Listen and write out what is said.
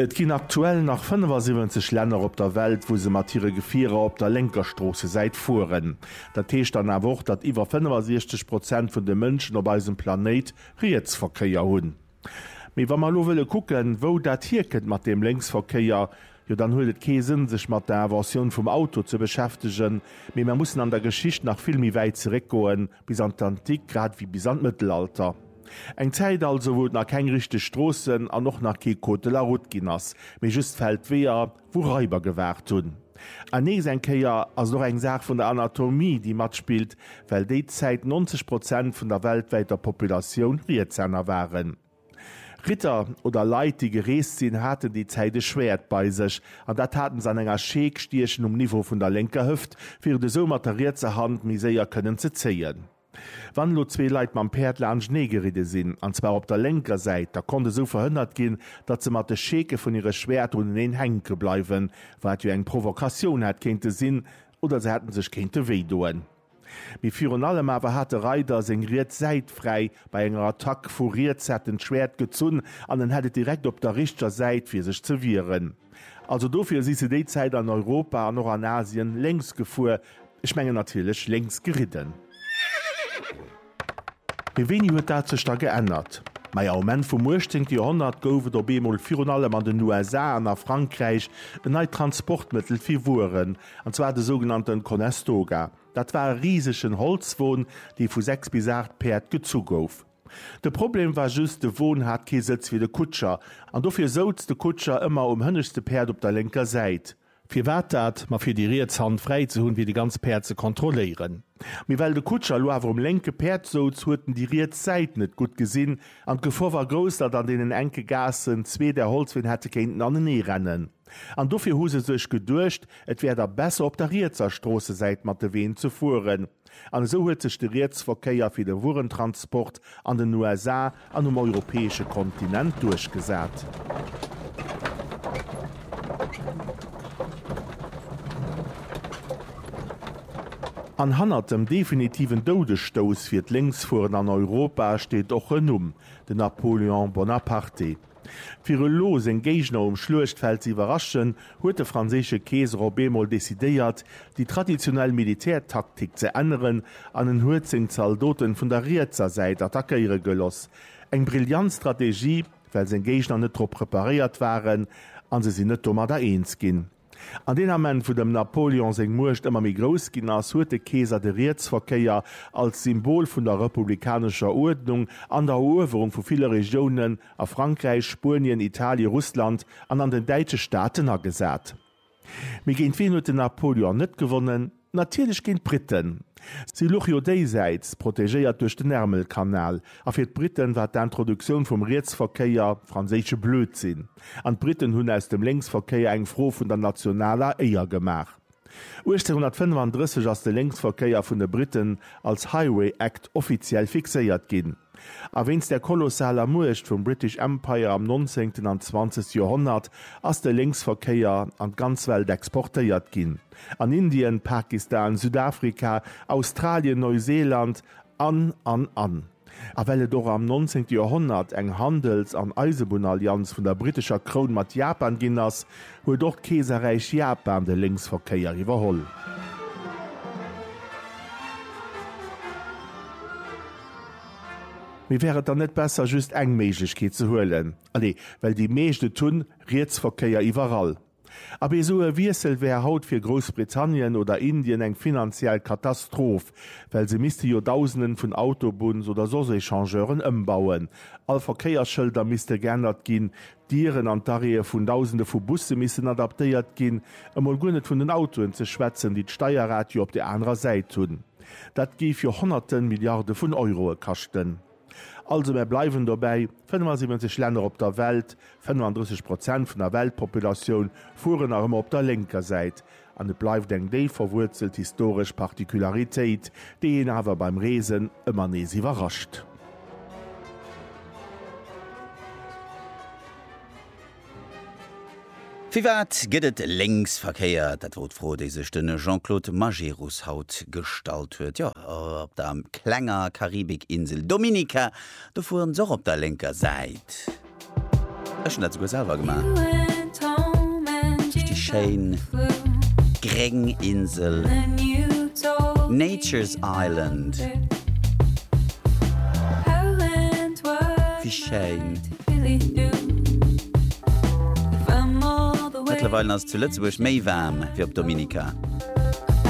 Et ginn aktuell nach 75 Länner op der Welt, wou se mat hire Gefierer op der lénker Stroossesäit fueren. Dat heescht dann awer och, datt iwwer 65 Prozent vun de Mënschen op eisem Planéit Rietsverkéier hunn. Mee wa mer elo wëlle kucken, wou dat hierkënnt mat deem Lénksverkéier, jo dann huet et kee Sënn, sech mat der Inventioun vum Auto ze beschäftegen, mee mer mussen an der Geschicht nach vill méi wäit zeréckgoen, Bis an d'Antik, grad ewéi bis an d'Mëttelalter. Eng Zäit also, wou et nach keng richteg Stroossen an och nach kee Code de la Route ginn ass, mee just Feldweeër, wou Raiber gewaart hunn. An nees eng Kéier ass et och eng Saach vun der Anatomie, déi matspillt, well déi Zäit 90 Prozent vun der weltwäiter Populatioun Rietshänner waren. Ritter oder Leit, déi gereest sinn, haten déi Zäit e Schwäert bei sech, an dat hate se an enger Schee gstiechen um Niveau vun der lénker Hëft, fir et esou mat der rietser Hand méi séier kënnen ze zéien. Wann elo zwee Leit mam Päerd laanschtenee geridde sinn, an zwar op der lénker Säit, da konnt esou verhënnert ginn, datt se mat de Scheeke vun hire Schwäerter uneneen hänke bleiwen, wat jo eng Provokatioun hätt kéinte sinn oder se hätte sech kéinte wéidoen. Mee virun allem awer hat de Reider seng riets Säit fräi bei enger Attack. Vu riets hat en d'Schwäert gezunn an en hat et direkt op der richteger Säit fir sech ze wieren. Also dofir si se déi Zäit an Europa an och an Asien lénks gefuer, ech mengen natierlech lénks geridden. Mee wéini huet dat sech da geännert? Maja, um Enn vum 18. Joerhonnert gouf et op eemol virun allem an den USA an a Frankräich en neit Transportmëttel fir Wueren, an zwar de sougenannten Conestoga. Dat war e risegen Holzwon, dee vu 6 bis 8 Päerd gezu gouf. De Problem war just, de Won hat kee Sëtz fir de Kutscher, an dofir souz de Kutscher ëmmer um hënneschte Päerd op der lénker Säit. Firwat dat? Ma fir déi riets Hand fräi ze hunn, fir déi ganz Päerd ze kontrolléieren. Mee well de Kutscher elo awer um lénke Päerd souz, huet en déi riets Säit net gutt gesinn an d'Gefor war grouss, datt an deenen enke Gaassen zwee där Holzween hätte kéinten anenee rennen. An dofir hu se sech geduecht, et wär da besser op der rietser Stroossesäit mat de Ween ze fueren. An esou huet sech de Rietsverkéier fir de Wuerentransport an den USA an um europäesche Kontinent duerchgesat. An hannert dem definitiven Doudesstouss fir d'Lénksfueren an Europa steet och en Numm, den Napoléon Bonaparte. Fir elo seng Géigner um Schluechtfeld ze iwwerraschen, huet de franséische Keeser op eemol decidéiert, déi traditionell Militärtaktik ze änneren an en huet seng Zaldoten vun der rietser Säit attackéiere geloss. Eng brillant Strategie, well seng Géigner net drop preparéiert waren a se sinn net domadder eens ginn. An deen Ament, wou dem Napoleon seng Muecht ëmmer méi grouss ginn ass, huet de Keeser de Rietsverkéier als Symbol vun der republikanescher Uerdnung an der Eruewerung vu ville Regiounen a Frankräich, Spuenien, Italien, Russland an an den däitsche Staaten agesat. Mee géint wien huet den Napoleon net gewonnen? Natierlech géint d'Britten. Si luch jo déisäits, protegéiert duerch den Ärmelkanal. A fir d'Britten war d'Introduktioun vum Rietsverkéier franséische Blödsinn. An d'Britten hunn aus dem Lénksverkéier eng Fro vun der nationaler Éier gemaach. 1835 ass de Lénksverkéier vun de Britten als Highway Act offiziell fixéiert ginn. A wéinst der kolossaler Muecht vum British Empire am nonzéngten an zwanzegste Joerhonnert ass de Lénksverkéier an d'ganz Welt exportéiert ginn, an Indien, Pakistan, Südafrika, Australien, Neuseeland an, an, an. A well et och am nonzéngte Joerhonnert eng Handels an Eisebunnallianz vun der britescher Kroun mat Japan ginn ass, huet och d'Keeserräich Japan de Lénksverkéier iwwerholl. Mee wär et dann net besser just eng Méiglechkeet ze huelen? Allez, well déi meescht et hunn, Rietsverkéier iwwerall. Abee esou e Wiessel wär haut fir Groussbritannien oder Indien eng finanziell Katastroph, well se misste jo Dausenden vun Autobunns oder soss Echangeuren ëmbauen, all Verkéiersschëlder misste geännert ginn, D'Dieren an d'Arrêtë vun Dausende vu Busse missen adaptéiert ginn, emol guer net vun den Autoen ze schwätzen, déi d'Steierrad jo op der anerer Säit hunn. Dat géif jo Honnerte Milliarde vun Euroe kaschten. Also mär bleiwen dobäi, 75 Länner op der Welt, 35 Prozent vun der Weltpopulatioun, fueren nach ëmmer op der lénker Säit. An et bleift eng déif verwuerzelt historesch Particularitéit, déi een awer beim Reesen ëmmer nees iwwerrascht. Firwat gëtt et Lénksverkéier? Dat wor d'Fro, déi sech de Jean-Claude Majerus haut gestallt huet. Jo, op der klenger Karibikinsel Dominica, do fueren se och op der lénker Säit. Ech hun dat souguer selwer gemaach. Richteg schéin gréng Insel, Nature's Island. Wéi schéin. Mëttlerweilen ass et zu Lëtzebuerg méi waarm wéi op Dominica.